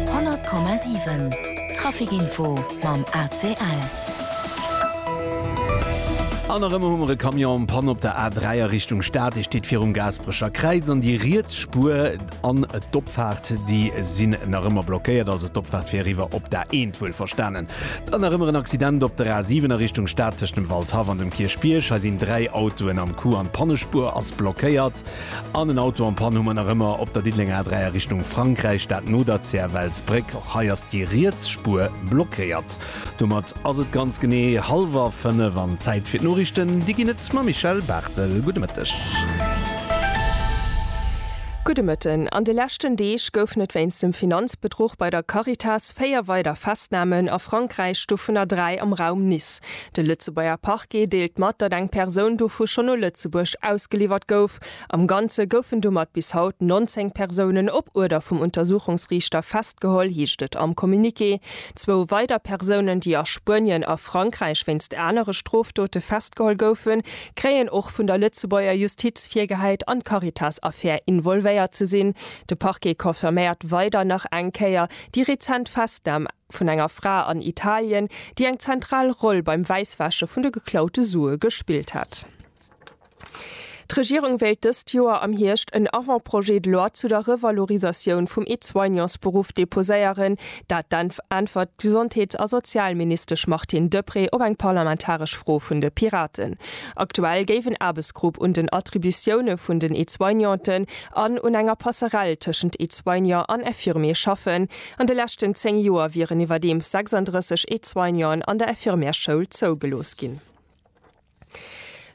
100,7 Trafic Info mam ACL. An erëm hu mer e Camion en panne op der A3 a Richtung Stad. Dee steet virum Gaasperecher Kräiz an déi riets Spuer an d'Opfaart, déi sinn nach ëmmer blockéiert. Also d'Opfaart fir eriwwer op d'A1, wuel verstanen. Dann nach ëmmer en Accident op der A7 a Richtung Stad tëscht dem Waldhaff an dem Kierchbierg. Hei sinn dräi Autoen am Coup an d'Pannespuer ass blockéiert. An en Auto am Pann hu mer nach ëmmer op der Diddelenger A3 a Richtung Frankräich, dat no der Zäerwelsbréck. Och hei ass déi riets Spuer blockéiert. Domat ass et ganz genee hallwer 5 an Zäit fir d'Noriichten. Déi ginn et mam Michèle Barthel. Gudde Mëtteg. Gudde Mëtten. An de leschten Deeg goufen et wéinst dem Finanzbedruch bei der Caritas 4 weider Festnamen a Frankräich, dovunner 3 am Raum Nice. De Lëtzebuerger Parquet deelt mat, datt eng Persoun dovu schonn no Lëtzebuerg ausgeliwwert gouf. Am Ganze goufen domat bis haut 19 Persounen op Uerder vum Untersuchungsriichter festgeholl, heescht et am Communiqué. Zwou weider Persounen, déi a Spuenien a Frankräich wéinst anere Strofdote festgeholl goufen, kréien och vun der Lëtzebuerger Justiz virgehäit, an d'Caritas-Affär involvéiert ze sinn. De Parquet confirméiert weider nach eng Kéier déi rezent Festnam. vun enger Fra an Italien, déi eng zentral Roll beim Wäisswäsche vun de geklaute Sue gespillt hätt. D'Regierung wéilt dëst Joer am Hierscht en Avant-projet de loi zu der Revalorisatioun vum Aide-soignantsberuff deposéieren. Dat äntwert d'Gesondheets a Sozialministesch Martine Deprez op eng parlamentaresch Fro vun de Piraten. Aktuell géif en Aarbechtsgrupp un den Attributioune vun den Aide-soignanten an un enger Passerell tëschent Aide-soignant an Infirmier schaffen. An de leschten 10 Joer wieren iwwerdeems 36 Aide-soignanten an der Infirmièreschoul zougelooss ginn.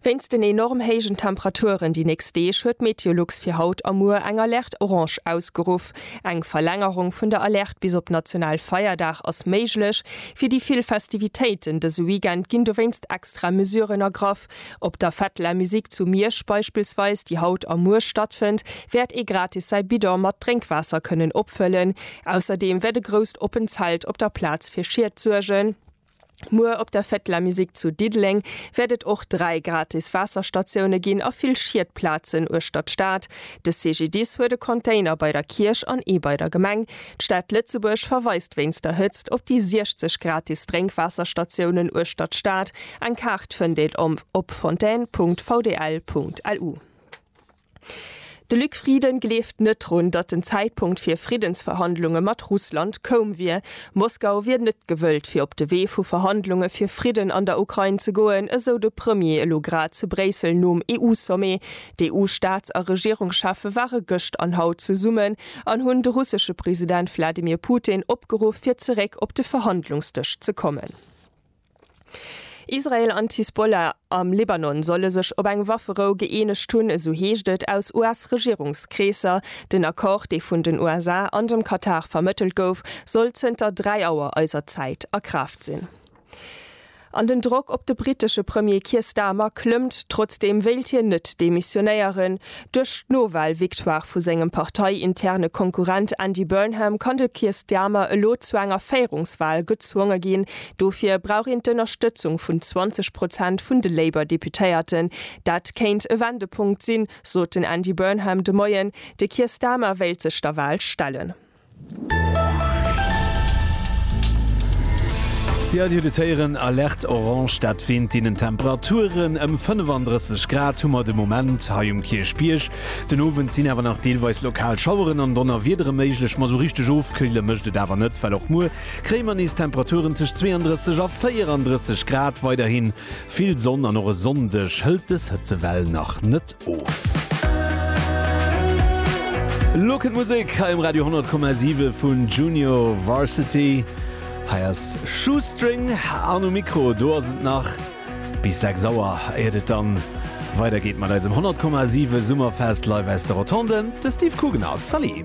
Wéinst den enorm héijen Temperaturen déi nächst Deeg huet d'Meteolux fir haut a muer eng Alerte orange ausgeruff. Eng Verlängerung vun der Alerte bis op national Feierdag ass méiglech. Fir déi vill Festivitéiten dëse Weekend ginn dowéinst extra Mesuren ergraff, Etapp. Op der Fête de la Musique zu Miersch beispillsweis, déi haut a muer stattfënnt, wäert ee gratis säi Bidon mat Drénkwaasser kënnen opfëllen. Ausserdeem wäert e grousst oppen Zelt op der Plaz fir Schied suergen. Muer op der Fête de la Musique zu Diddeleng wäert et och dräi gratis Waasserstatioune ginn a vill Schiedplazen uechter d'Stad. De CGDIS huet e Container bei der Kierch an ee bei der Gemeng. D'Stad Lëtzebuerg verweist wéinst der Hëtzt op déi 60 gratis Drénkwaasserstatiounen uechtert d'Stad. Eng Kaart fënnt een om op fontaine.vdl.lu. De Luc Frieden gleeft net drun, datt den Zäitpunkt fir Friddensverhandlunge mat Russland koum wier. Moskau wier net gewëllt fir op de Wee vu Verhandlunge fir Fridden an der Ukrain ze goen, esou de Premier elo grad zu Bréissel nom EU-Sommet. D'EU-Staats a Regierungscheffe ware gëscht an haut zesummen, an hunn de russesche President Wladimir Putin opgeruff fir zeréck op de Verhandlungsdësch ze kommen. Israel an d'Hisbollah am Libanon solle sech op eng Wafferou gëeenegt hunn, esou heescht et aus US-Regierungskreesser. Den Accord, dee vun den USA an dem Katar vermëttelt gouf, soll zënter 3 Auer eiser Zäit a Kraaft sinn. An den Drock op de brittesche Premier Keir Starmer klëmmt, trotzdeem wéilt hien net demissionéieren. Duerch d'Nowal-Victoire vu sengem parteiinterne Konkurrent Andy Burnham kann de Keir Starmer elo zu enger Féierungswal gezwonge ginn. Dofir brauch een d'Ënnerstëtzung vun 20 Prozent vun de Labour-Deputéierten. Dat kéint e Wendepunkt sinn, sot den Andy Burnham de Moien. De Keir Starmer wéilt sech der Wal stellen. Jo, Dir hutt et héieren, Alerte orange, dat wéint deenen Temperaturen. Ëm 35 Grad hu mer de Moment hei um Kierchbierg. Den Owend sinn awer nach deelweis lokal Schaueren an Donnerwiedere méiglech, ma esou richteg ofkühle mécht et awer net, well och muer kréie mer nees Temperaturen tëscht 32 a 34 Grad. Weiderhi Vill Sonn an och e Sonndeg hëlt dës Hëtzewell nach net of. Elo kënnt Musek hei um Radio 10,7 vun Junior Varsity. Hei ass Shoestring an um Mikro do ass et nach bis 6 Auer, éiert et dann weider geet mat eisem 10,7 Summerfest live aus de Rotonden, de Steve Kugener. Zalli!